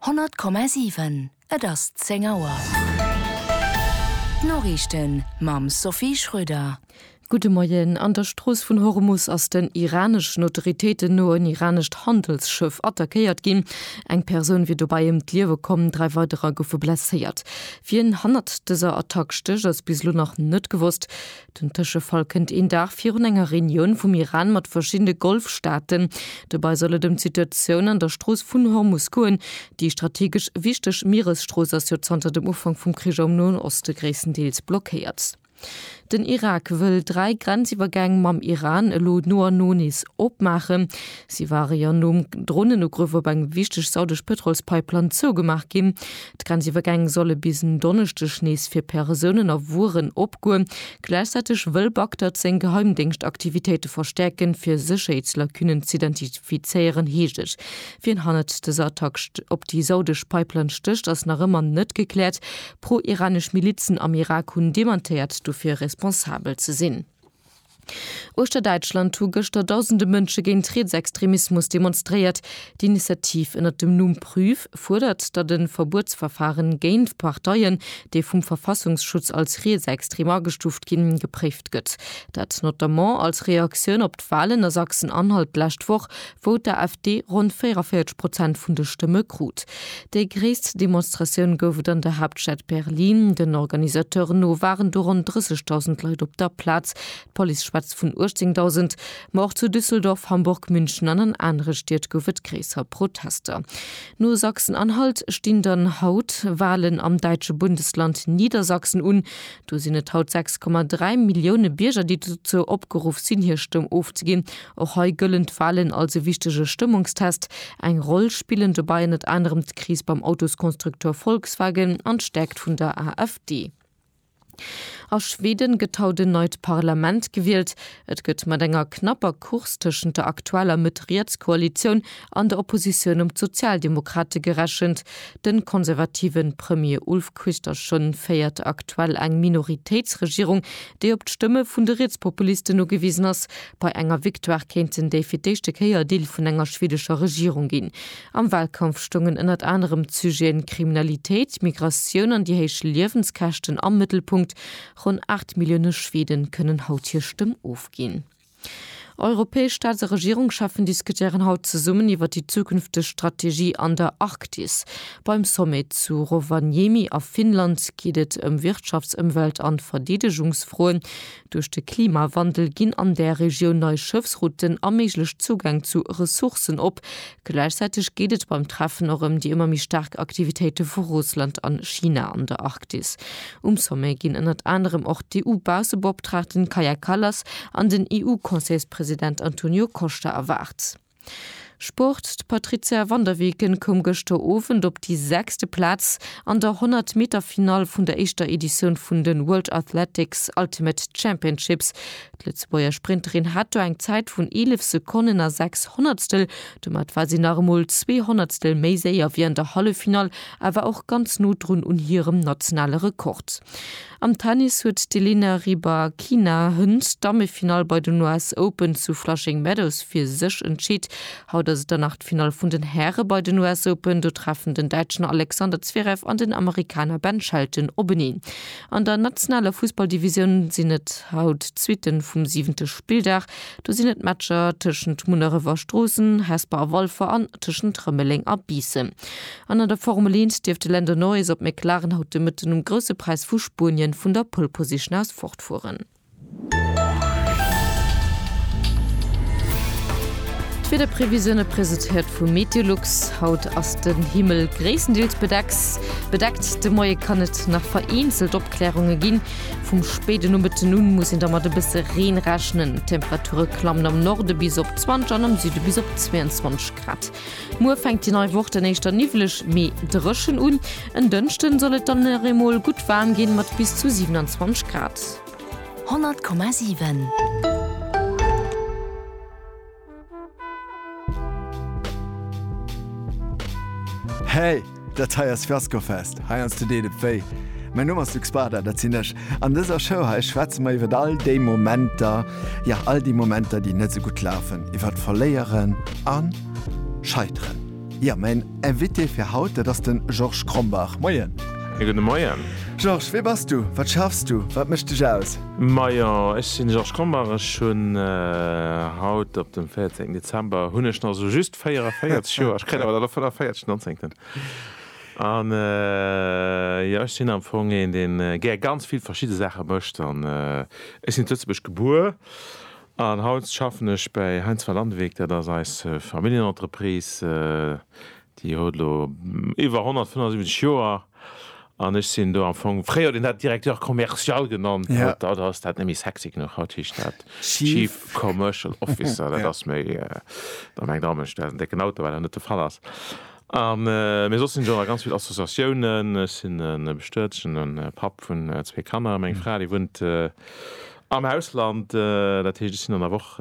100,7 Et ass 10 Auer. D'Noriichten mam Sophie Schröder. Gudde Moien. An der Strooss vun Hormus ass den iraneschen Autoritéiten no en iranescht Handelsschëff attackéiert ginn. Eng Persoun wier dobäi ëm d'Liewe komm, dräi weiderer goufe blesséiert. Wien hannert dëser Attack stécht, ass bis elo nach net gewosst. Den Tëschefall kënnt een Dag virun enger Reunioun vum Iran mat verschiddene Golfstaaten. Dobei soll et ëm d'Situatioun an der Strooss vun Hormus goen. Déi strategesch wichteg Mieresstrooss ass jo zanter dem Ufank vum Krich am Noen Oste gréisstendeels blockéiert. Den Irak wëll dräi Grenziwwergäng mam Iran elo no an no nees opmaachen. Si ware jo nom Dronenugrëff op eng wichteg saudesch Pëtrolspipeline zougemaach ginn. D'Grenziwwergäng solle bis en Donneschdeg nees fir Persounen a Wueren opgoen. Gläichzäiteg wëll Bagdad seng Geheimdéngschtaktivitéite verstäerken, fir Sécherheetslacunen z'identifizéieren, heescht et. Wien hannert dëser Attack op déi saudesch Pipeline stécht, ass nach ëmmer net gekläert. Pro-iranesch Milizen am Irak hunn dementéiert, dofir responsabel ze sinn. Uechter Däitschland hu gëschter dausende Mënsche géint Rietsextremismus demonstréiert. D'Initiativ ënnert dem Numm Prüf fuerdert, datt e Verbuetsverfare géint Parteien, déi vum Verfassungsschutz als rietsextrem agestuuft ginn, gepréift gëtt. Dat notamment als Reaktioun op d'Walen a Sachsen-Anhalt d'lescht Woch, wou d'AfD ronn 44 Prozent vun de Stëmme krut. Déi gréisst Demonstratioun gouf et an der Haaptstad Berlin. Den Organisateuren no waren do ronn 30.000 Leit op der Plaz, d'Police schwätzt vun 18.000. Ma och zu Düsseldorf, Hamburg, München an an anere Stied gouf et gréisser Protester. No Sachsen-Anhalt stinn dann haut Walen am däitsche Bundesland Niedersachsen un. Do sinn et haut 6,3 Millioune Bierger, déi dozou opgeruff sinn, hir Stëmm ofzeginn. Och hei gëllen d'Walen als e wichtege Stëmmungstest. Eng Roll spillen dobäi ënnert anerem d'Kris beim Autoskonstrukteur Volkswagen an d'Stäerkt vun der AfD. A Schweden gëtt haut en neit Parlament gewielt. Et gëtt mat enger knapper Course tëschent der aktueller Mëtt-Riets-Koalitioun an der Oppositioun ëm d'Sozialdemokrate gerechent. De konservative Premier Ulf Kristersson féiert aktuell eng Minoritéitsregierung, déi op d'Stëmme vun de Rietspopulisten ugewisen ass. Bei enger Victoire kéinten déi fir d'éischte Kéier Deel vun enger schwedescher Regierung ginn. Am Walkampf stoungen ënnert anerem d'Sujeten Kriminalitéit, Migratioun an déi héich Liewenskäschten am Mëttelpunkt. Ronn 8 Millioune Schwede kënnen haut hir Stëmm ofginn. Europäesch Staats a Regierungscheffen diskutéieren haut zesummen iwwer déi zukünfteg Strategie an der Arktis. Beim Sommet zu Rovaniemi a Finnland geet et ëm Wirtschafts-, Ëmwelt an Verdeedegungsfroen. Duerch de Klimawandel ginn an där Regioun nei Schëffsrouten a méiglech Zougäng zu Ressourcen op. Gläichzäiteg geet et beim Treffen och ëm déi ëmmer méi staark Aktivitéite vu Russland an China an der Arktis. Um Sommet ginn ënnert anerem och d'EU-Bausseboptraagten Kaja Kallas an den EU-Conseilspresident Antonio Costa erwaart. Sport, D'Patrizia van der Weken koum gëschter Owend op déi sechste Plaz an der 100 Meter Finall vun der éischter Editioun vun de World Athletics Ultimate Championships. D'Lëtzebuerger Sprinterin hat do eng Zäit vun 11 Sekonnen a 6 Honnertstel. Domat war si nach emol zwee Honnertstel méi séier wéi an der Halleffinall, awer och ganz no drun un hirem nationale Rekord. Am Tennis huet d'Elina Rybakina Hunt d'Dammefinall bei den US Open zu Flushing Meadows fir sech entscheet. Haut ass et dann nach d'Finall vun den Häre bei den US Open. Do treffen den Däitschen Alexander Zverev an den Amerikaner Ben Shelton openeen. An der nationaler Fussballdivisioun sinn et haut d'Suitte vum siwente Spilldag. Do sinn et d'Matcher tëschent Munneref a Stroossen, Hesper a Walfer an tëschent Rëmeleng a Biissen. An an der Formel 1 dierft de Lando Norris op McLaren haut de Mëtten um Grousse Präis vu Spuenien vun der Pole Position aus fortfueren. D'Wiederprevisioune presetéiert vu Meteolux, Haut ass den Himmel gréisstendeels bedecks bedeckt, de Moie kann et nach vereenzelt Opklärunge ginn. Vum spéiden Nomëtten un muss een da mat e bësse Reen rechnen. D'Temperature klammen am Norde bis op 20 an am Süde bis op 22 Grad. Muer fänkt déi nei Woch dann éischter niwweleg, mee dréchen un. En Dënschden soll et dann nach eemol gutt waarm ginn, mat bis zu 27 Grad. 100,7. Hey! Dat hei ass Fiascofest, hei ans de deet et wéi. Mäin Numm ass Luc Spada, dat sinn ech. An dëser Show hei schwätze mer iwwert all déi Momenter, jo all déi Momenter, déi net sou gutt lafen, iwwert Verléieren a Scheiteren. Jo, mäin Invité fir haut, dat ass den Georges Krombach. Moien. E gudde Moien. Georges, wee bass du? Wat schaffs du? Wat mécht dech aus? Majo, ech sinn de Georges Krombach. Ech hunn haut, op dem 14 Dezember, hunn ech nach sou just. 44 Joer, ech kréien awer dann och 45, 19. An jo, ech sinn am Fong een, dee gär ganz vill verschidde Saache mécht. An ech sinn zu Lëtzebuerg gebuer an haut schaffen ech bei Heinz van Landewyck. Dat ass eis Familljenentreprise, déi huet elo iwwer 175 Joer. An ech sinn do am Fong, fréier huet een dat Directeur commercial genannt, haut ass dat net méi sexy genuch, haut heescht dat Chief Commercial Officer. Dat ass méi, da mengt all Mënsch, dat ass en décken Auto, wat awer net de Fall ass. Mee soss sinn ech och nach a ganz vill Associatiounen. Ech sinn e bestuetene Papp vun zwee Kanner. Meng Fra, déi wunnt am Ausland, dat heescht ech sinn an der Woch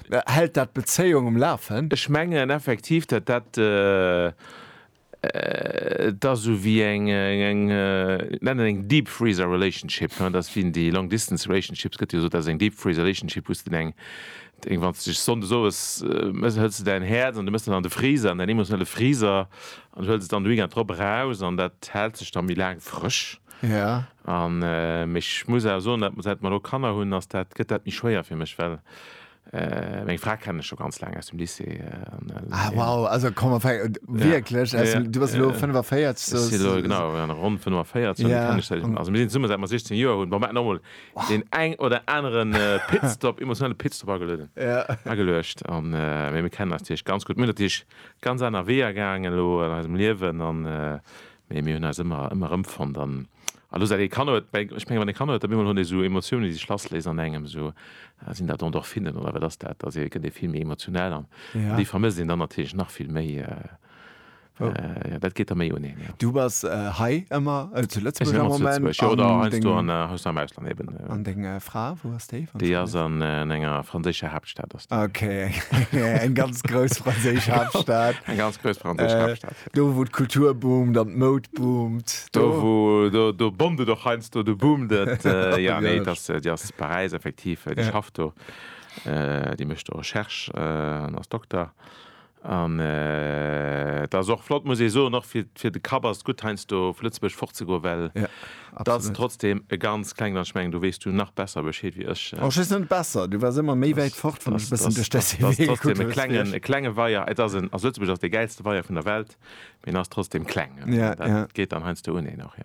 Hält dat d'Bezéiung um Lafen? Ech mengen effektiv, datt dat et ass esou wéi eng, ech nennen eng deep freezer relationship, dat ass wéi déi long distance relationships gëtt jo gesot, dat ass eng deep freezer relationship, wou s de eng, wann s de dech sonndes owes mëss, hëls de däin Häerz an du mëss dat an de Freezer, an däin emotionelle Freezer, an du hëls et dann de Weekend drop eraus an dat hält sech da méi laang frësch. Ja. An mee ech muss awer soen, dat säit mer elo Kanner hunn, ass dat, gëtt dat méi schwéier fir mech, well meng Fra kennen ech scho ganz laang aus dem Lycée an. Ah wow, also komm ma fäng wierklech, Ja, ja. du bass elo 45, Ech si elo so genau an ronn 45, an déi kennen ech säit, Ja. also mir sinn zesummen säit mer 16 Joer hunn. Bon, mer hätten och mol deen eng oder aneren Pitstop, emotionale Pitstop agelueden, Ja. ageluecht an, mee mir kennen eis natierlech ganz gutt. Mir hunn natierlech ganz aner Weeër gaangen elo an eisem Liewen an Mee mir hunn eis ëmmer, ëmmer erëmfonnt an elo säit ee Kanner huet, ech menge wann ee Kanner huet, op eemol hunn déi esou Emotiounen, déi sech lassléisen an engem, esou, sinn dat Endorphinen oder wat ass dat, da gëtt ee vill méi emotional an déi vermësst een dann natierlech nach vill méi, jo, dat geet da méi un een, jo. Du bass hei ëmmer zu Lëtzebuerg am Moment? Ech sinn ëmmer zu Lëtzebuerg, jo, oder heiansdo an, heiansdo am Ausland eben. An deng Fra, wou ass déi? Déi ass an enger franséischer Haaptstad ass déi. Ok, eng ganz grouss franséisch Haaptstad. Eng ganz grouss franséisch Haaptstad. Do wou d'Kultur boomt an d'Moud boomt. Do wou, do, do boomt et och heiansdo, do boomt et. Jo, nee, et ass, déi ass zu Paräis, effektiv. Déi schafft do, déi mécht do Recherche an ass Dokter. An et ass och flott, muss ee soen, och fir, fir de Kapp ass et gutt, heiansdo vu Lëtzebuerg fortzegoen, well. Et ass trotzdem e ganz klengen an ech mengen do weess du nach besser Bescheed wéi ech. Oh ech weess net besser, du waars ëmmer méi wäit fort wann ech e bëssen duerch däi CV gekuckt hunn. E klenge Weier, et ass en, also Lëtzebuerg ass dee gäilste Weier vun der Welt, mee en ass trotzdem kleng, dat geet dann heiansdo uneen och.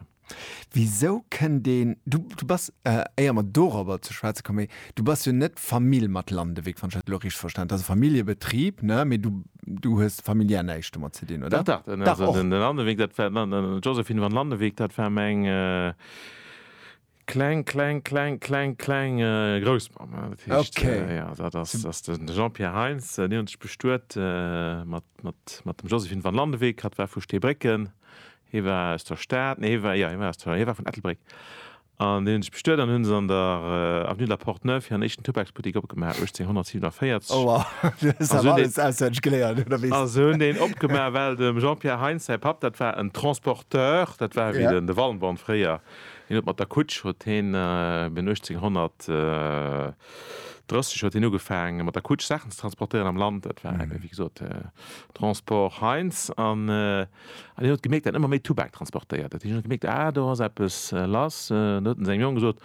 Wisou kënnt een, du bass, éier mer dorobber ze schwätze kommen, du bass jo net Famill mat Landewyck, wann ech dat elo richteg verstanen, et ass e Familljebetrib, ne, mee du Du hues familiär näischt domat ze dinn, oder? Dach, dach, dach, den Landeweek, dat war d'Josephine van Landeweek, dat war meng kleng, kleng, kleng, kleng, kleng Groussmamm. Dat heescht, jo, dat ass de Jean-Pierre Heintz, déi hunn sech bestuet mat dem Josephine van Landeweek. Hatt war vu Steebrécken, hie war aus der Stad, nee, hie war, jo, hie war aus der, hie war vun Ettelbréck. An deenen sech bestuet an hu se an der Avenue de la Porte Neuve hiren éischten Tubaksbuttik opgemaach, 1847. Oua, du hues awer alles auswenneg geléiert, oder? A se hunn deen opgemaach, well dem Jean-Pierre Heintz säi Papp, dat war en Transporteur, dat war ewéi de Wallenborn fréier, deen huet mat der Kutsch, huet heen bin 1830 huet heen ugefaangen, mat der Kutsch Saachen ze transportéieren am Land. Dat war ewéi gesot Transport Heintz. An hien huet gemierkt, datt ëmmer méi Tubak transportéiert huet. Hien huet gemierkt, ah, do ass eppes lass. An huet en sengem Jong gesot,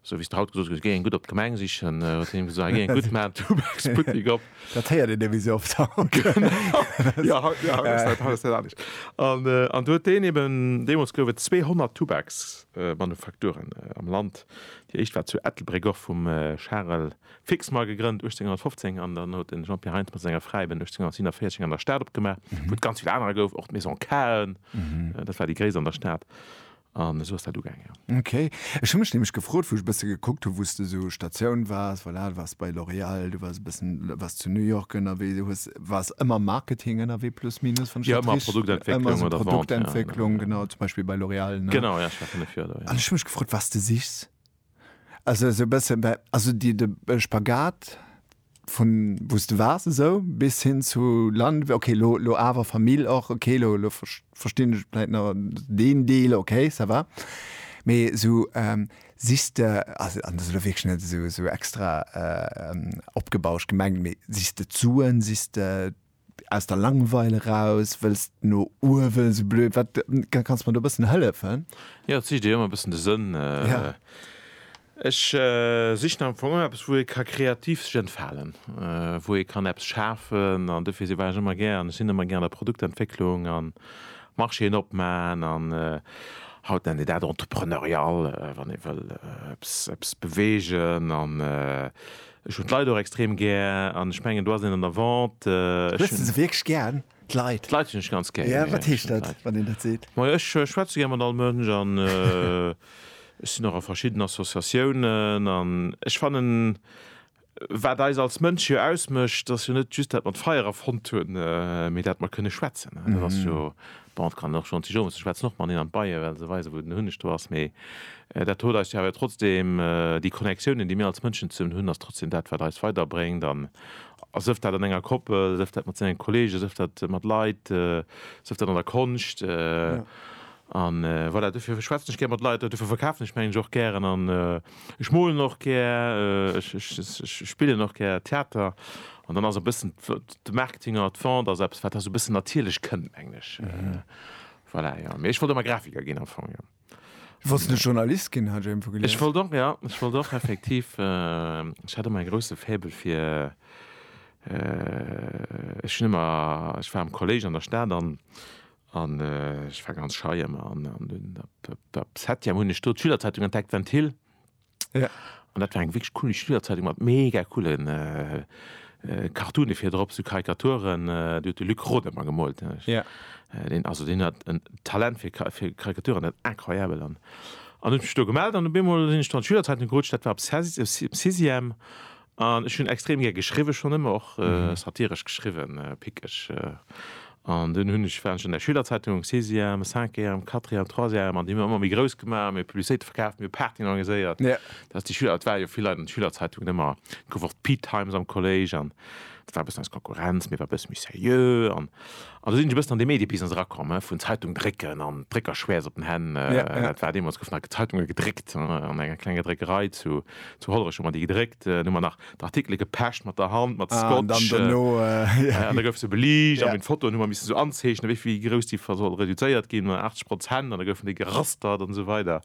esou wéi s de haut gesot hues, Géi eng gutt op d'Gemeng sichen. Huet hien him gesot, ah, géi eng gutt, maan en Tubaksbuttek op. Dat héiert een ewéi esou oft haut. Genau, jo, haut, jo, haut ass dat anescht. An do huet deen eben, deemools gouf et 200 Tubaksmanufakturen am Land. Déi éischt war zu Ettelbréck, och vum Charel Fixmar gegrënnt 1815 an dann huet de Jean-Pierre Heintz mat senger Fräi ben 1847 eng an der Stad opgemaach, wou et ganz vill anerer gouf, och d'Maison Cahen, dat war déi gréisst an der Stad. An esou ass dat ugaang, jo. Ok. Ech hu mech nämlech gefrot, wou ech e bësse gekuckt hu wou s de esou Statioun waars, voilà, du waars bei L'Oréal, du waars e bëssen, waars zu New York ënnerwee, du hues, waars ëmmer am Marketing ënnerwee plus minus, wann ech dat rich. Jo, ëmmer Produktentwécklung oder Vente. Ëmmer esou Produktentwécklung, genau, zum Beispill bei L'Oréal, ne? Genau, jo, ech war fënnef Joer do, jo. An ech hu mech gefrot, wat s de sichs. Also esou e bësse bei, also déi de Spagat vun wou s de waars esou bis hin zu Land, okay lo lo awer Famill och, okay lo lo verstinn ech vläit nach deen Deel, okay ça va. Mee esou sichs de, also an dat ass elo wierklech net esou esou extra opgebauscht gemengt, mee sichs de d'Suen, sichs de Aus der Langweil eraus wëlls de no uewen, sou blöd wat, kanns mer do e bëssen hëllefen? Jo, et sicht ee jo ëmmer e bëssen de Sënn. Ech sichen am Fong ëmmer eppes, wou ee ka kreativ sech entfalen, wou ee kann eppes schafen an dofir war ech ëmmer gär an ech sinn ëmmer gär an der Produktentwécklung an Marchéen opman an haut nennt ee dat entrepreneurial, wann ee wëll eppes, eppes beweegen an Ech hunn d'Leit och extrem gär an ech mengen do ass een an der Vente. Hues de se wierklech gär, d'Leit? D'Leit hunn ech ganz gär. Jo, wat heescht dat, wann een dat seet? Majo, ech schwätze gär mat all Mënsch an ech sinn och a verschidden Associatiounen an ech fannen, wat eis als Mënsche jo ausmécht, ass jo net just dat mer d'Feier erfonnt hunn, mee dat mer kënne schwätzen. Dat ass jo Bon, et kann een och schonn zu Jomus, ech schwätzen och mateneen an d'Beie well se weisen, wou den Hunneg do ass, mee dat huet eis jo awer trotzdem, déi Connectiounen, déi mir als Mënschen zesummen hunn, ass trotzdem dat, wat eis weiderbréngt an sëff dat an enger Koppel, sëff dat mat sengen Kollegen, sëff dat mat Leit, sëff dat an der Konscht. An voilà, dofir schwätzen ech gär mat Leit, dofir verkafen ech meng ech och gären an. Ech molen och gär, ech spillen och gär Theater an dann ass e bëssen de Marketing an der Vente ass eppes, wat da esou e bëssen natierlech kënnt, mengen ech. Voilà, jo. Mee ech wollt ëmmer Grafiker ginn am Fong, jo. Du wollts net Journalist ginn, hat ech iergendwou gelies. Ech wollt och, ja, ech wollt och effektiv, ech hat ëmmer e grousse Faible fir, ech hunn ëmmer, ech war am Kollége an der Stad an An ech war ganz schei ëmmer. An der Septième hunn ech do d'Schülerzeitung entdeckt, Ventil. An dat war eng wierklech cool Schülerzeitung mat mega coole Cartoone vir drop, sou Karikaturen. Déi huet de Luc Roth ëmmer gemoolt. Deen, also deen hat en Talent fir Karikaturen, dat incroyabel. An hunn ech mech do gemellt an op eemol sinn ech do an d'Schülerzeitung gerutscht. Dat war op Sixième. An ech hunn extrem gär geschriwwen, schonn ëmmer och satiresch geschriwwen, pickeg. An dunn hunn ech, war ech an der Schülerzeitung, am Sixième, am Cinquième, am Quatrième, am Troisième, an déi hu mir ëmmer méi grouss gemaach, mir Publicitéite verkaaft, mir Partyen organiséiert. Dat ass déi Schüler, et ware jo vill Leit an de Schülerzeitungen ëmmer, et gouf och d'Peatimes am Kolléisch an et war e bëssen eis Konkurrenz, mee et war e bësse méi seriö. An do sinn ech e bëssen an de Mediebusiness erakomm, he, vun Zeitung drécken an Dréckerschwäerz op den Hänn. Dat war deemools, goufen nach Zeitunge gedréckt an enger klenger Dréckerei zu Hollerech, hu mer déi gedréckt. Dann hu mer nach d'Artikele gepecht mat der Hand, mat Scotch. An da gouf se beliicht a mat Fotoen hu mer missen esou anzeechnen, wéi vill, wéi grouss déi soll reduzéiert ginn, 80 Prozent, an da goufen déi gerastert an esou weider.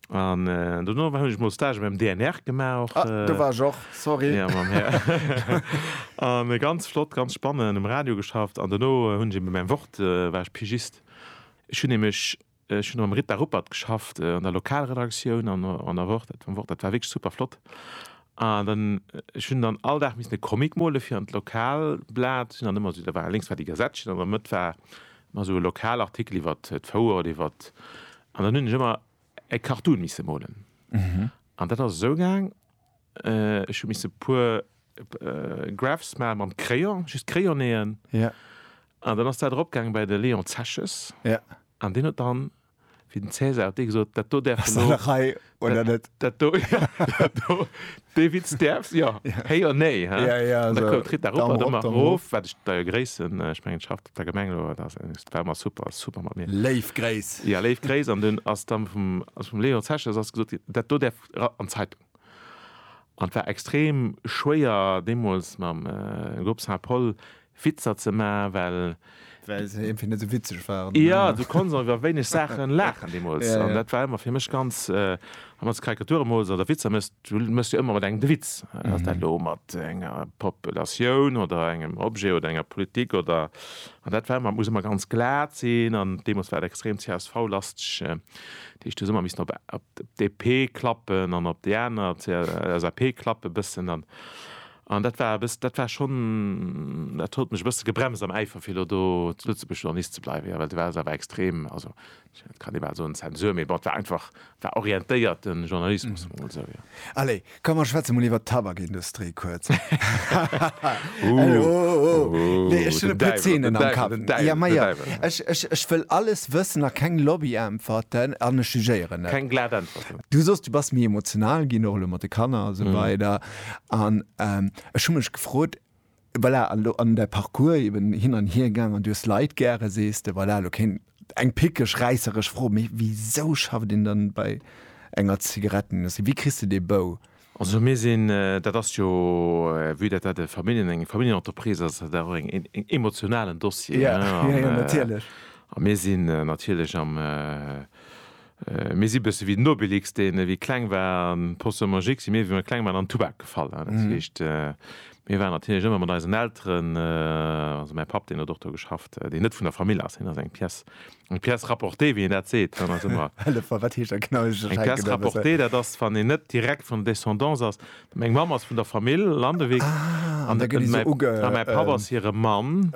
An dono war hunch mol Stage beim DNR gemaach och. Ah, do war ech och, sorry. Ja, mam Här. An ganz flott, ganz spannend, um Radio geschafft. An dono hunn ech eben beim Wort, war ech Pigist. Ech hunn nämlech, ech hunn mam Ritter Ruppert geschafft an der Lokalredaktioun an der, an der Wort, dat, vum Wort. Dat war wierklech super flott. An dann, ech hunn dann all Dag missen e Comic mole fir an d'Lokalblat. Hunn dann ëmmer esou, da war, lénks war déi Gazettchen an an der Mëtt war Mä sou e Lokalartikel iwwer d'Fouer oder iwwer. An dann hunn ech ëmmer e Cartoon misse molen. An dat ass esou gaang, ech hu misse e puer Graphs maache mam Crayon, just Crayonnéeën. An dann ass dat eropgaangen bei de Léon Zeches. An deen huet dann wéi den Cäsar huet dee gesot, dat do däerfs de lo. Hei oder net? Dat do, ja, dat do, dee Witz däerfs, jo, héi oder néi, hä? Ja, ja, an da koum d'Ritt da rop an ëmmer erof, wat ech deier Gréiss, ech mengen et schafft op der Gemeng elo, dat war ëmmer super, super mat mir. Léif Gréiss. Jo, léif Gréiss, an dunn ass dann vum Léon Zeches ass gesot ginn, dat do däerf an d'Zeitung. An et war extrem schwéier deemools mam Grupp Saint-Paul Witzer ze maachen, well. Well se iergendwéi net esou witzeg waren. Jo, du konnts och iwwer wéineg Saache laachen deemools. An dat war ëmmer fir mech ganz, wann s de Karikature mools oder Witzer méchs, du méchs jo ëmmer mat engem de Witz. Ass dat elo mat enger Populatioun oder engem Objet oder enger Politik oder. An dat war ëmmer, muss ëmmer ganz glat sinn an deemools war et extrem CSV-lasteg. Dat heescht, do si mer missen op DP klappen an op déi aner LSAP klappen e bëssen. An an dat war e bëss-, dat war schonn, dat huet mech e bësse gebremst am Äifer fir elo do zu Lëtzebuerg Journalist ze bleiwen, jo, well do war se awer extrem, also kann ee bal soen, Zensur, mee bon, et war einfach, war orientéierten Journalismus, soen wir emol esou, jo. Allez, Komm mer schwätze mol iwwer d'Tabakindustrie kuerz. Ech wëll alles wëssen a keng Lobbyäntwerten an ech jugéieren net. Keng glat Äntwerten. Du soss du bass méi emotional ginn, och elo mat de Kanner a sou weider. An ech hu mech gefrot, Voilà, an elo an däi Parcours eben hin an hier gaang an du hues Leit gäre, sees de, voilà, elo kéint eng pickeg, räisseresch Fro, mee wisou schafft een dann bei enger Zigarettenindustrie? Wéi kriss de dee Bou? Also mir sinn, dat ass jo, vue dat dat e Familljen, eng Familljenentreprise ass, ass dat och en emotionalen Dossier, hein, an mir sinn natierlech am Mir si bësse wéi den Obelix, deen, wéi e kleng war, an d'Potion magique si mir, wéi mir kleng waren, an den Tubak gefall. Dat heescht, mir waren natierlech ëmmer mat eisen Elteren, also mäi Papp, deen huet och do geschafft, deen net vun der Famill ass, hien ass eng pièce, eng pièce rapportée, wéi een dat seet, hien ass ëmmer. Hëllef mer, wat heescht dat genau? Eng pièce rapportée, dat ass, wann een net direkt vun der Descendance ass, Meng Mamm ass vun der Famill Landewyck an mäi Papp ass hire Mann.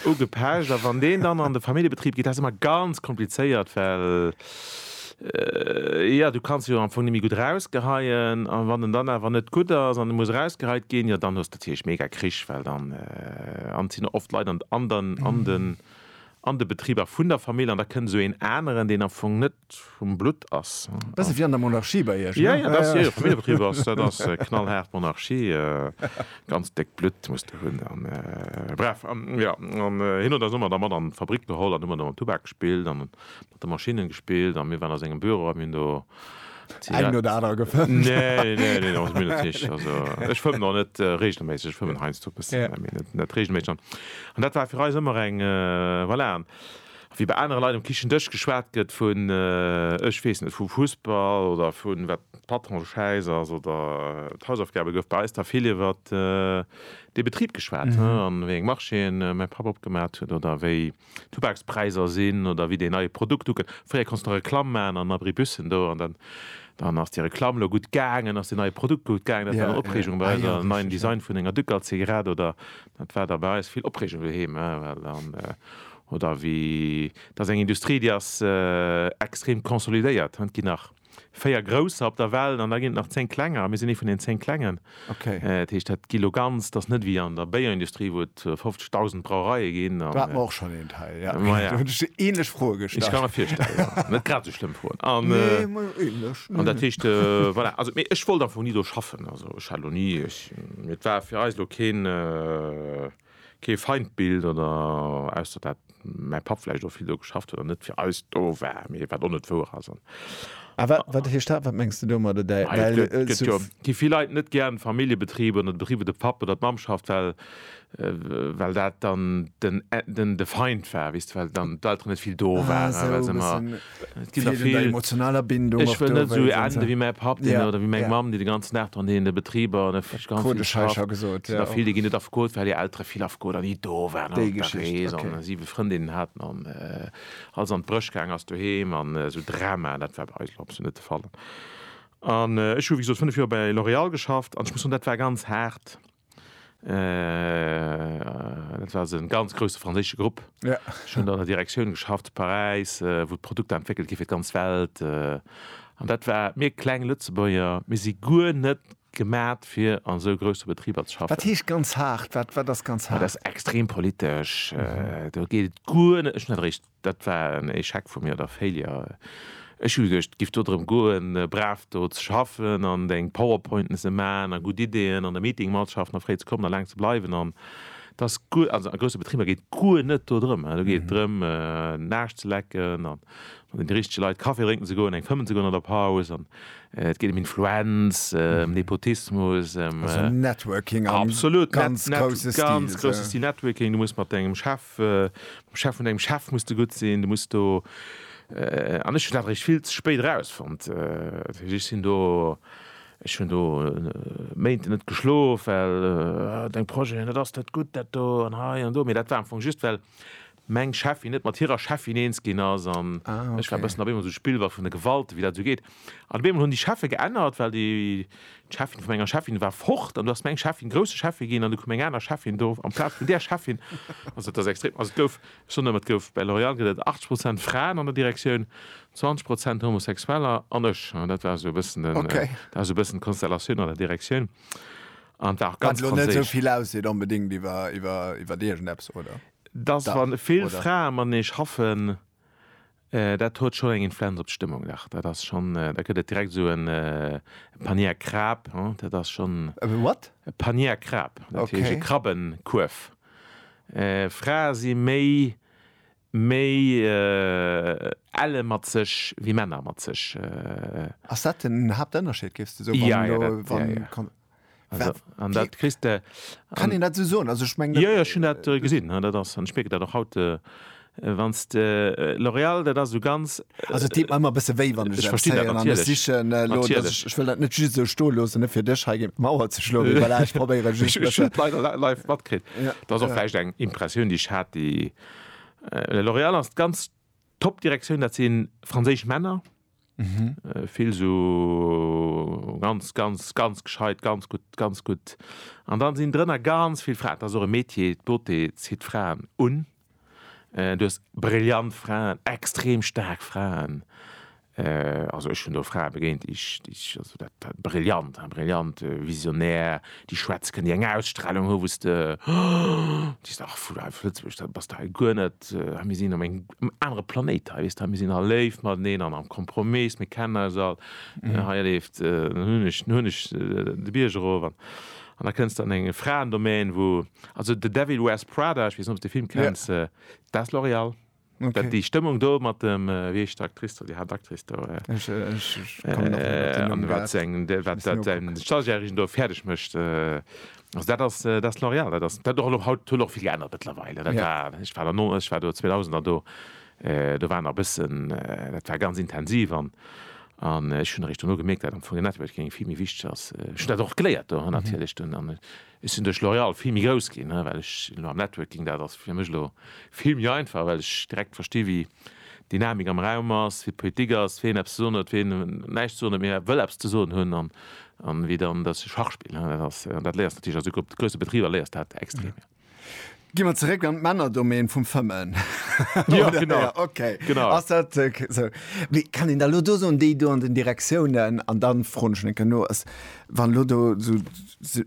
Ugepecht a wann deen dann an de Familljebetrib geet, dat ass ëmmer ganz komplizéiert, well jo du kanns jo am Fong net méi gutt rausgeheien a wann en dann awer net gutt ass an e muss rausgeheit ginn, jo dann hues de natierlech mega Krich, well dann an et sinn oft Leit an de Betriber vun der Famill an da kënnt esou een aneren, deen am Fong net vum Blutt ass. Bësse wéi an der Monarchie bei Iech, ne? Jo, jo, jo, Familljebetrib ass, dat ass knallhaart Monarchie. Ganz déckt Blutt muss de hunn a bref. An jo, an hien huet eis ëmmer da mat an d'Fabrik geholl an hu mer do mam Tubak gespillt a mat de Maschinnen gespillt a mir waren a sengem Büro a mir hunn do Zigaretten. Eng oder aner gefëmmt. Nee, nee, nee, also mir net richteg. Also ech fëmmen och net reegelméisseg, ech fëmmen heiansdo e bëssen, mee net reegelméisseg. An dat war fir eis ëmmer eng, voilà. Wéi bei anere Leit um Kichendësch geschwat gëtt vun, ech weess net, vum Fussball oder vun wat d'Patron schäiss ass oder d'Hausaufgabe gouf bei eis da vill iwwer de Betrib geschwat an wéi eng Marchéen mäi Papp opgemat huet oder wéi d'Tubakspräiser sinn oder wéi deen neie Produkt ukënnt. Fréier konns de nach Reklamm maachen an Abribussen do an dann ass déi Reklamm lo gutt gaangen, ass deen neie Produkt gutt gaangen. Dat war eng Opreegung bei eis, en neien Design vun enger Ducal-Zigarett oder dat war da bei eis vill Opreegung doheem well dann Oder wéi, et ass eng Industrie, déi ass extrem consolidéiert. Et ginn nach véier Grousser op der Welt an da ginn et nach zéng Klenger a mir sinn ee vun den zéng Klengen. Dat heescht, dat gi lo ganz, et ass net wéi an der Béierindustrie, wou et 50.000 Brauereie ginn. Do hat mer och schonn een Teil, jo. Ma ja. Do hunn ech déi änlech Froe gestallt. Ech ka mer virstellen, jo. Net grad esou schlëmm Froen. Nee, ma änlech. An dat heescht, voilà. Also, mee ech wollt einfach ni do schaffen. Also, ech hat lo ni, ech, mir, et war fir eis lo keen. Kee Feindbild oder, ausser dat mäi Papp vläicht och vill do geschafft huet an net fir eis do war, mee wat och net wouer ass. A wat heescht dat? Wat mengs de domadder? Et gi vill Leit net gär an Familljebetriber oder Betriber, wou de Papp oder d'Mamm schafft, well dat dann de Feind war, well dann d'Elteren net vill do waren, well se ëmmer emotionaler Bindung ech wëll net sou ende wéi mäi Papp deen oder wéi meng Mamm déi de ganzen Dag dran heen de Betriber an der vill déi ginn net afgeholt well hir Eltere vill afgeholt an ni do waren an der Rees an siwe Frëndinnen haten an alles an d'Bréch gaangen ass doheem an sou Dramaen. Dat war bei eis elo absolut net de Fall an ech hu wéi gesot 5 Joer bei L'Oréal geschafft an ech muss soen dat war ganz haart. Dat war e ganz grousse franséische Grupp. Ech hunn an der Direktioun geschafft zu Paräis, wou d'Produkter entwéckelt gi fir d'ganz Welt. An dat war, mir kleng Lëtzebuerger, mir si guer net gemat fir an esou grousse Betriber ze schaffen. Wat heescht ganz haart? Wat ass ganz haart? Dat ass extrem politesch. Do geet et guer net, ech hunn dat eréischt Dat war en Echec vu mir, oder Failure. Ech hu geduecht, et giff do drëm goen, brav do ze schaffen an deng Powerpointen ze man a gutt Ideen an de Meeting matzeschaffen a fréi ze kommen a laang ze bleiwen an et ass guer, also a grousse Betriber geet guer net do drëm. Do geet et drëm Naascht ze lecken an mat de richtege Leit Kaffi drénken ze goen, eng fëmmen ze goen an der Paus an et geet em Influenz, em Nepotismus, em. Also Networking am ganz grousse Stil. Ganz grousse Stil Networking. Du muss mat dengem Chef. Mam Chef vun dengem Chef muss de gutt sinn, du muss do, an ech hunn dat eréischt vill ze spéit erausfonnt. Ech sinn do, ech hunn do Méint net geschlof, well deng Projeten, dat ass net gutt, dat do an hei an do. Mee dat war am Fong just, well meng Cheffin net mat hirer Cheffin eens ginn ass an ech war e bëssen op eemol esou Spillball vun de Gewalten, wéi dat esou geet. An op eemol hunn déi Cheffe geännert, well déi d'Cheffin vu menger Cheffin war fort an du ass meng Cheffin grousse Cheffe ginn an du koum eng aner Cheffin do amplaz vun där Cheffin. Also et ass extrem. Also et gouf, ech soen ëmmer, et gouf bei L'Oréal gëtt et 80 Prozent Fraen an der Direktioun, 20 Prozent Homosexueller an ech. An dat war esou e bëssen den, dat war esou e bëssen d'Konstellatioun an der Direktioun. An et war och ganz franséisch. Wat elo net esou vill ausseet onbedéngt iwwer, iwwer, iwwer iergendeppes, oder? Dass wa vill Frae matenee schaffen, Dat huet schonn eng Influenz op d'Stëmmung, dach. Dat ass schonn, da gëtt et direkt esou e Panier Krab, he, dat ass schonn. E what? E Panier Krab, dat heescht e Krabbenkuerf. Frae si méi, méi elle mat sech wéi Männer mat sech. Ass dat den Haaptënnerscheed, géifs de soen? Wann elo, wann. an dat kris de kann den dat so also ich mein, ja, ja, schon dat äh, gesinn dat ass an speke dat doch haut äh, wann äh, L'Oreal dat as so ganz äh, also de immer bisse wéi wann ich verste sichchen äh, lo, ich, ich will dat net just so sto los ne fir dech he Mauer ze schlo live matkrit da so flecht eng impressioun die ich hat die äh, L'Oreal as ganz top direktioun dat sinn franséisch Männer Vill sou ganz, ganz, ganz gescheit, ganz gutt, ganz gutt. An dann sinn drënner ganz vill Fraen. Et ass och e Metier, d'Beauté zitt Fraen un. Du hues brillant Fraen, extrem staark Fraen. Also ech hunn do Frae begéint, déi ech, déi ech, also dat, dat brillant, brillant, visionär, déi schwätze kënnen, déi eng Ausstrahlung hu wou s de, oh, déi s de, ach, vu hei vu Lëtzebuerg, da bass de hei guer net, hei mir sinn am eng, um anere Planéit hei, weess de, mir sinn all léif mateneen an am Kompromiss, mir kennen eis all, hei erleeft den Hunneg, den Hunneg de Bierg erof an an da kënns de an eng Fraendomaine, wou also The Devil Wears Prada, ech weess net, ob s de de Film kenns, dat ass L'Oréal. Dat déi Stëmmung do mat dem, wéi heescht d'Actrice do, déi Haaptactrice do, an wat se eng, wat dat säin Stagiairchen do fäerdeg mécht. Also dat ass dat L'Oréal, dat ass dat och elo haut, huet och vill geännert mëttlerweil. Dat war, ech war der no, ech war do 2000er do, do war nach e bëssen, dat war ganz intensiv an an ech hunn eréischt dono gemierkt, dat am Fong den Networking vill méi wichteg ass. Ech hunn dat och geléiert do natierlech dunn an ech sinn duerch L'Oréal vill méi grouss ginn, well ech elo am Networking, dat ass fir mech elo vill méi einfach, well ech direkt versti wéi Dynamik am Raum ass, wéi d'Politik ass, wien eppes ze soen huet, wien näischt ze soen huet, mee awer wëll eppes ze soen hunn, an wéi dann dat Schachspill ass. An dat léiers natierlech, also op grousse Betriber léiers du dat extrem. Gi mer zeréck an d'Männerdomaine vum Fëmmen. Jo, genau. Okay. Genau. Ass dat esou? Mee kann een da elo do soen, déi do an den Direktiounen, an da froen ech en Kéier no, ass, wann elo do esou.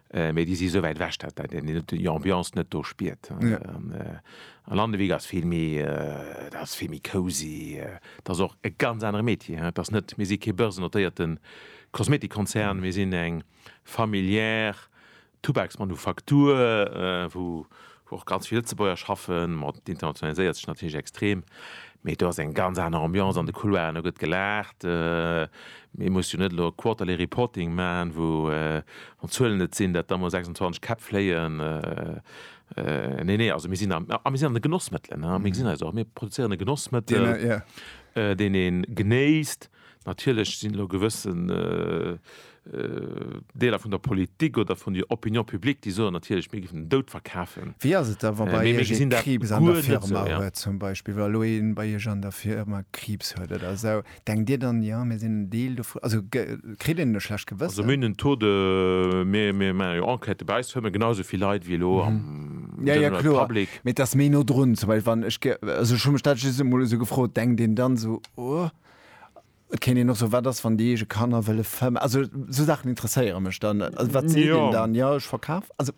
Mee déi si sou wäit ewech, datt een déi Ambiance net do spiert. A Landewyck ass vill méi, dat ass vill méi cosy. Dat ass och e ganz anere Metier. Et ass net, mir si kee börsennotéierte Kosmetikkonzern, mir sinn eng familiär Tubaksmanufaktur, wou Och ganz vill Lëtzebuerger schaffen, ma et internationaliséiert sech natierlech extrem. Mee do ass eng ganz aner Ambiance an de Couloiren, do gëtt gelaacht. Ee muss jo net elo Quarterly Reporting man, wou, wann d'Zuelen net sinn, dat da mol 26 Käpp fléien. Nee, nee, also mir sinn am, a mir sinn an de Genossmëttelen, mir gesinn eis och, mir produzéieren e Genossmëttel, deen ee genéisst. Natierlech sinn elo gewëssen Deeler vun der Politik oder vun der Opinion publique, déi soen natierlech, mir géifen den Doud verkafen. Wéi ass et da, wa bei Iech ee Kriibs an der Firma huet zum Beispill, wa elo ee bei Iech an der Firma Kriibs huet oder esou? Denkt Dir dann, jo, mir sinn en Deel dovun? Also kritt een e schlecht Gewëssen? Also mir hunn en Taux de, mir maache jo Enquêten, bei eis huele mer genau esou vill Leit wéi elo am general public. Jo, jo, kloer. Mee et ass méi no drun zum Beispill, wann ech, also ech hu mech dat just emol esou gefrot, denkt een dann esou, oh. Et kéint een och soen, wat ass, wann déi eege Kanner wëlle fëmmen? Also esou Saachen interesséiere mech dann. Also wat seet een Ja. dann? Jo, ech verkaf. Also,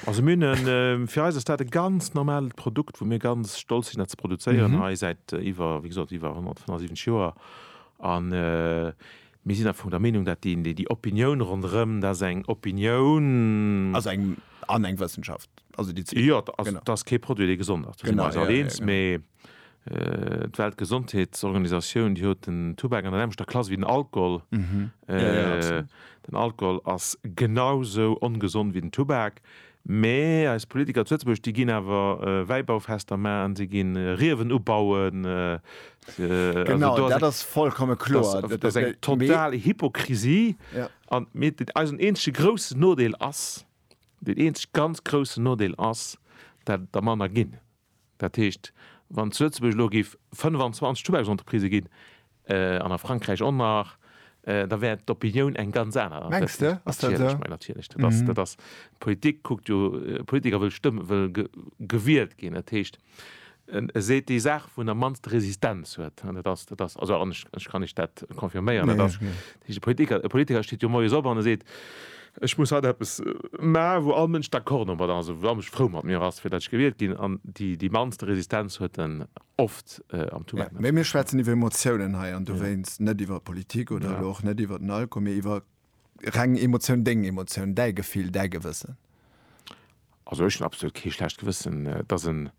Also mir hunn en, äh, fir eis ass dat e ganz normalt Produkt, wou mir ganz stolz sinn, dat ze produzéieren hei säit äh, iwwer, wéi gesot, iwwer 175 Joer. An äh, mir sinn am Fong der Meenung, dat déi, déi, déi Opinioun ronderëm, dat ass eng Opinioun, also eng, an eng Wëssenschaft. Also déi zwee. jo, also Genau. dat ass kee Produit, dee gesond ass. Do si Genau, mer eis ja, ja, alleens, genau. mee d'Weltgesondheetsorganisatioun déi huet den Tubak an der nämlechter Klass wéi den Alkohol. Den Alkohol ass genau sou ongesond wéi den Tubak, mä eis Politiker zu Lëtzebuerg déi ginn awer Wäibaufester maachen, se gi Riewen ubauen, also do ass eng total Hypokrisie. An eisen eenzege groussen Nodeel ass, deen eenzege ganz groussen Nodeel ass, dat der manner ginn. Dat heescht, wann zu Lëtzebuerg elo géif 25 Tubaksentreprisë ginn, an a Frankräich och nach, da wär d'Opinioun eng ganz aner. Mengs de? Ass dat esou? Natierlech, natierlech. Dat ass, dat ass, d'Politik kuckt jo, e Politiker wëll stëmm, wëll gewielt ginn. Dat heescht, e seet déi Saach, wou en am mannste Resistenz huet. An dat ass, dat ass, also an ech, ech kann iech dat confirméieren, dat ass, dat heescht, e Politiker, e Politiker steet jo moies op an e seet, Ech muss haut eppes maachen, wou all Mënsch d'accord domat ass, wou all Mënsch frou mat mir ass, fir datt ech gewielt ginn. An déi mannste Resistenz huet en oft am Tumult. Mä mir schwätzen iwwer Emotiounen hei, an dowéinst net iwwer Politik oder elo och net iwwer den Alkohol, mee iwwer reng Emotioun, deng Emotioun, däi Gefill, däi Gewëssen. Also ech hunn absolut kee schlecht Gewëssen, dass en,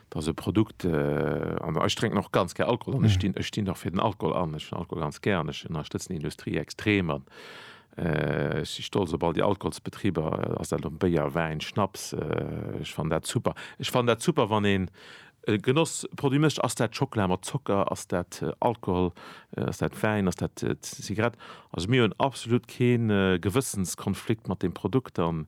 dass e Produkt, an ech drénken och ganz gär Alkohol an ech stinn, ech stinn och fir den Alkohol an, ech hunn Alkohol ganz gär an ech ënnerstëtzen déi Industrie extrem an ech si stolz op all déi Alkoholsbetriber, ass dat elo Béier, Wäin, Schnaps, ech fannen dat super. Ech fannen dat super, wann een e Genossproduit mécht, ass dat Schockela mat Zocker, ass dat Alkohol, ass dat Wäin, ass dat Zigarett. Also mir hunn absolut kee Gewëssenskonflikt mat deem Produkt an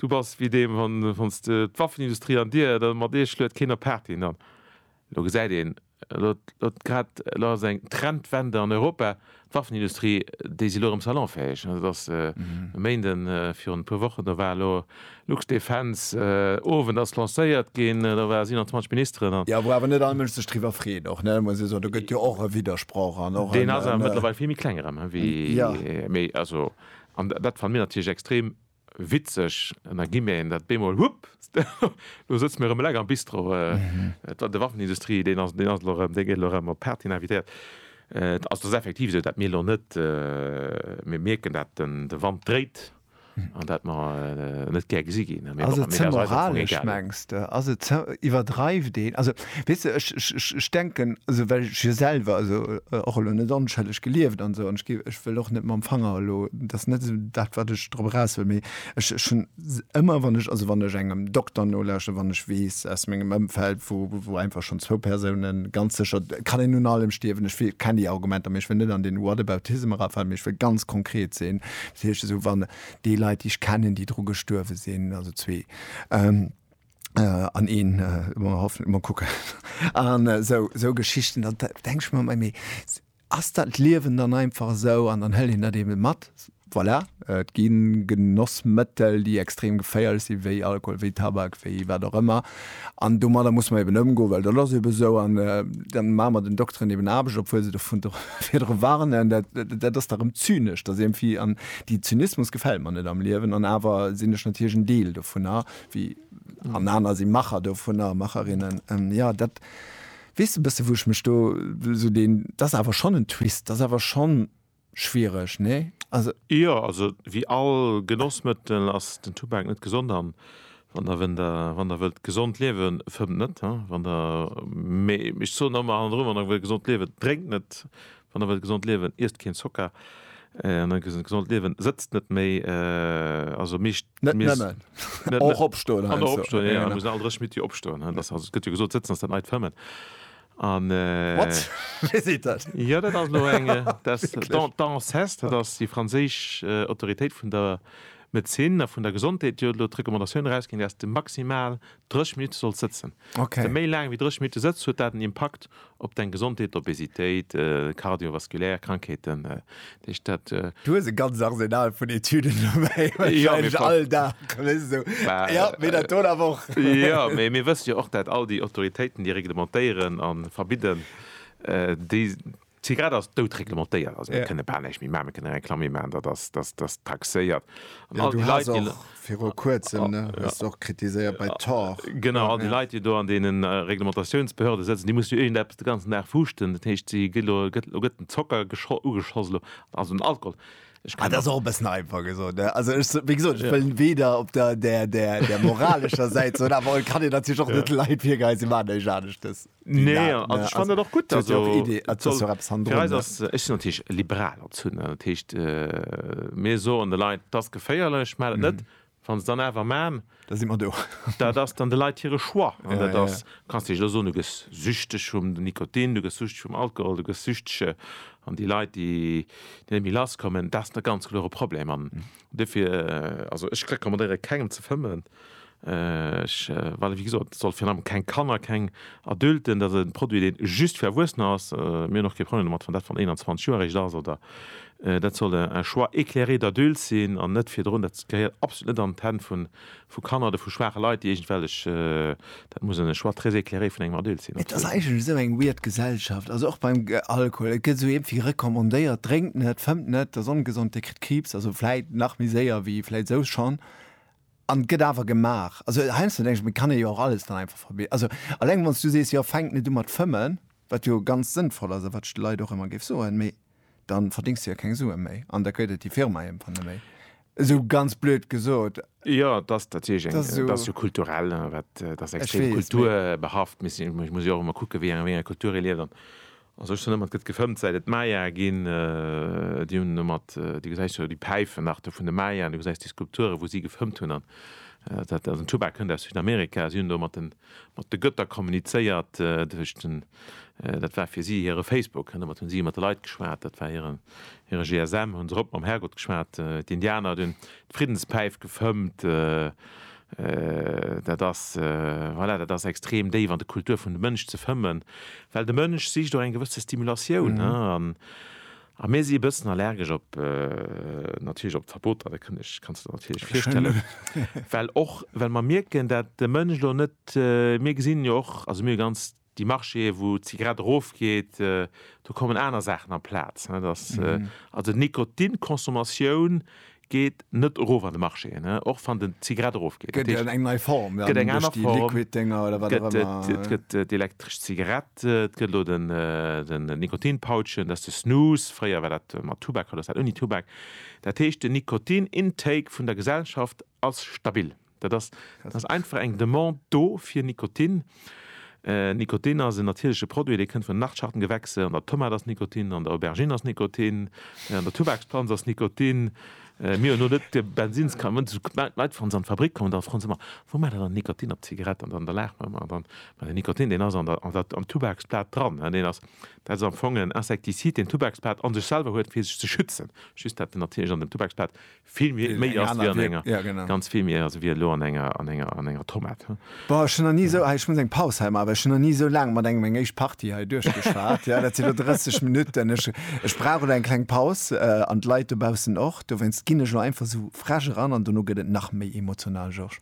Du bass wéi deem, wann s de d'Waffenindustrie an dir, da mat iech luet keen op d'Party. An dann, elo gesäit een, elo elo grad, elo ass eng Trendwende an Europa, d'Waffenindustrie, déi si elo erëm salonfäeg. Dat ass e Méinde virun e puer Wochen, do war elo Luxdefense Owend ass lancéiert ginn, do ware 27 Ministeren an. Jo, wou awer net all Mënsch sech driwwer freet och, ne, muss ee soen. Do gëtt jo och e Widdersproch an och en. Deen ass awer mëttlerweil vill méi kleng erëm, wéi, mee also, an dat fanne mir natierlech extrem Witzeg, mä gi mir een dat bemol, hupp, elo sëtze mir erëm eleng am Bistro. Et war de Waffenindustrie, deen ass elo erëm, dee gëtt elo erëm op Pertiny invitéiert. Et ass effektiv esou, dat mir elo net, mir mierken, dat de Wand dréit an dat mer net gär gesi ginn. Ass et ze moralesch, mengs de? Ass et ze, iwwerdreift een? Also Weess de, ech, ech, ech, ech denken, also well ech jo selwer, also och elo net onschëlleg gelieft an esou, an ech gi, ech wëll och net mam Fanger elo, dat ass net esou dat, wat ech drop eraus wëll, mee ech, ech hunn ëmmer, wann ech, also wann ech engem Dokter nolauschteren, wann ech weess aus mengem Ëmfeld, wou, wou einfach schonn zwou Persounen ganz sécher, kann een un allem stierwen, ech wél, kenn déi Argumenter, mee ech wëll net an deen Whataboutism erafalen, mee ech wëll ganz konkret sinn, dat heescht esou, wann déi Leit, déi ech kennen, déi dru gestuerwe sinn, also zwee, Äh, an een, äh, mer hoffen, mer kucken. An äh, sou, sou Geschichten, dann denk ich mer, mei, ass dat Liewen dann einfach sou an dann hëll een dat eben mat. Voilà, äh, et ginn Genossmëttel, déi extrem geféierlech sinn, wéi Alkohol, wéi Tabak, wéi wat och ëmmer. An domadder muss mer eben ëmgoen, well dat ass eben sou. An äh, dann maache mer den Dokteren eben Aarbecht, obwuel se dovun virdru warnen. Dat, dat ass da rëm zynesch, dass irgendwie, an déi Zynismus gefält mer net am Liewen. An awer sinn ech natierlech en Deel dovunner, wéi an aner si Macher dovunner, Macherinnen. Ähm, ja, dat wees du bësse, wou ech mech do so den, dat ass awer schonn en Twist, dat ass awer schonn schwiereg, nee? Also. Jo, also wéi all Genossmëttel ass den Tubak net gesond an wann der, wenn der, wann der wëllt gesond liewen, fëmmt net, wann der, mee ech soen ëmmer hannendrun, wann der wëllt gesond liewen, drénkt net, Wann der wëllt gesond liewen, iesst keen Zocker. An dann gesond gesond liewen, sëtzt net méi, also meescht Net Mees. nëmmen. Net Och net. opstoen, An heiansdo. och opstoen, jo, jo, mir müssen all dräch Minutt jo opstoen, hein, dass, also et gëtt jo gesot, sëtzen ass dat neit fëmmen. An, What? Wéi seet dat? Jo, dat ass elo eng, dass d'An, d'Anses, dat ass déi franséisch Autoritéit vun der Medezin a vun der Gesondheet, déi huet elo d'Recommandatioun erausginn, dass de maximal dräch Minutte solls sëtzen. Dass de Okay. méi laang wéi dräch Minutte sëtzt, huet dat en Impakt Op deng Gesondheet, Obesitéit, cardiovasculaire Krankheeten, dat heescht dat. Du hues e ganz Arsenal vun Etüden dobäi, wahrscheinlech all Dag, wéist esou, jo, mee dat do awer och. Jo, mee mir wësse jo och, dat all déi Autoritéiten, déi reglementéieren a verbidden, déi Zigarett ass doutreglementéiert, also mir kënne bal näischt méi maachen, mir kënne Reklamm méi maachen, dat ass taxéiert. An all déi Leit, déi. Viru kuerzem, ne, hues de och kritiséiert bei Tor. Genau, all déi Leit, déi do an deene Reglementatiounsbehörde sëtzen, déi mussen jo iergendeppes de ganzen Dag fuuschten. Dat heescht, si ginn elo, gëtt, elo gëtt den Zocker gescho, ugeschoss elo, also den Alkohol. Ech kann. Dat ass och e bëssen einfach gesot, ne. Also ech, wéi gesot, ech wëll weder op der, der, der, der moralescher Säit soen, awer et kann een natierlech och net de Leit virgeheien, si maachen näischt aneschtes. Nee, also also, ich fand dat och gutt also, ja och Idee, et soll, ja fir eis ass ech sinn natierlech liberal als hunn dat heescht äh, mir soen de Leit dass geféierlech mä dat net mhm. wann se dann awer man da si man do dat ass dann de Leiit hire Choix an ja, dat ass ja. kannst dech lo so du gëss süchteg vum den Nikotin du gëss süchteg vum Alkohol du gëss süchtege an die Leiit die déi mi lass kommen dat net ganz klore Problem an mhm. Duerfir, also ech recommandéiere kengem ze fëmmen, ech, well wéi gesot, et soll virun allem keng Kanner, keng Adulten, dat ass e Produit deen just fir Erwuessener ass, mir hunn och kee Problem domat wann dat wann 21 Joer eréischt ass oder, dat soll un choix éclairé d'adultes sinn an net virdrun, dat gehéiert absolut net an d'Hänn vun vu Kanner oder vu schwaache Leit, déi iergendwellech, dat muss en Choix très éclairé vun engem Adulte sinn. Et ass eigentlech esou eng weird Gesellschaft, also och beim Alkohol, et gëtt esou iergendwéi recommandéiert, drénkt net, fëmmt net, dat ass ongesond, Dir kritt Kriibs, also vläit nach méi séier wéi vläit esou schonn, an et gëtt awer gemaach. Also heiansdo denke ech mir, et kann ee jo och alles dann einfach verbieden. Also alleng wann s du sees, jo fänkt net u mat fëmmen, wat jo ganz sënnvoll ass a wat ech de Leit och ëmmer géif soen, mee. dann verdings du ja keng Sue méi an da kréit et déi Firma iergendwann net méi. Esou ganz blöd gesot. Jo, et ass natierlech eng, et ass jo kulturell, wat, et ass extrem kulturbehaft. Ech muss jo och ëmmer kucken, wéi enger Kultur ee lieft. An ech soen ëmmer, et gëtt gefëmmt, säit et d'Maya ginn. Déi hunn ëmmer, du gesäis jo déi Päifen nach do vun de Maya an du gesäis déi Skulpturen, wou si gefëmmt hunn. An dat, den Tubac kënnt aus Südamerika, si hunn do ëmmer den, Mat de Götter kommunizéiert, dat heescht den, dat war fir si hire Facebook, an domat hunn si mat de Leit geschwat, dat war hiren, hire GSM, hunn se erop mam Herrgott geschwat. D'Indianer, dunn d'Friddenspäif gefëmmt, dat ass, voilà, dat ass extrem déif an de Kultur vun de Mënsch ze fëmmen, well de Mënsch sicht och eng gewësse Stimulatioun, A mir si e bëssen allergesch op, natierlech op d'Verboter, dat kënnt, ech kanns der natierlech virstellen, well och well mer mierken, dat de Mënsch elo net, mir gesinn jo och, also mir hu ganz déi Marchéë wou d'Zigarett erofgeet, do kommen aner Saachen amplaz, net, also d'Nikotinconsommation Geet net erof an de Marché, och wann den Zigarett erofgeet. Dat heescht, et gëtt eng aner Form, et gëtt d'elektresch Zigarett, et gëtt elo den Nikotinpouchen, dat ass de Snus, fréier war dat mat Tubak, haut ass dat ouni Tubak. Dat heescht, den Nikotin-Intake vun der Gesellschaft ass stabil. Dat ass, dat ass einfach eng Demande do fir Nikotin. Nikotin ass en natierleche Produit, dee kënnt vun den Nachtschattengewächse. An der Tomat ass Nikotin, an der Aubergine ass Nikotin, an der Tubaksplanz ass Nikotin. Mir hunn elo net de Bensins ka, wann d'Leit wann se an d'Fabrik kommen, da froen se ëmmer, Wou maacht Der dann Nikotin op d'Zigarett? An dann da laache mer ëmmer dann, Mä den Nikotin, deen ass an der, an der, am Tubaksblat dran. Deen ass, dat ass am Fong en Insektisid, deen d'Tubaksblat a sech selwer huet, fir sech ze schützen. Just dat natierlech an dem Tubaksblat Vill méi ass wéi an enger, ganz vill méi ass wéi elo an enger, an enger, an enger Tomate, hm. Boah, ech hunn nach ni esou, ech muss eng Paus hei maachen, well ech hunn nach ni esou laang mat engem eng éischt Partie hei duerchgeschwat, jo, dat sinn elo 30 Minutten. Ech, ech brauch elo eng kleng Paus, an d'Leit dobaussen och. Dowéinst ginn ech elo einfach esou frech eran an dono gëtt et nach méi emotional, Georges.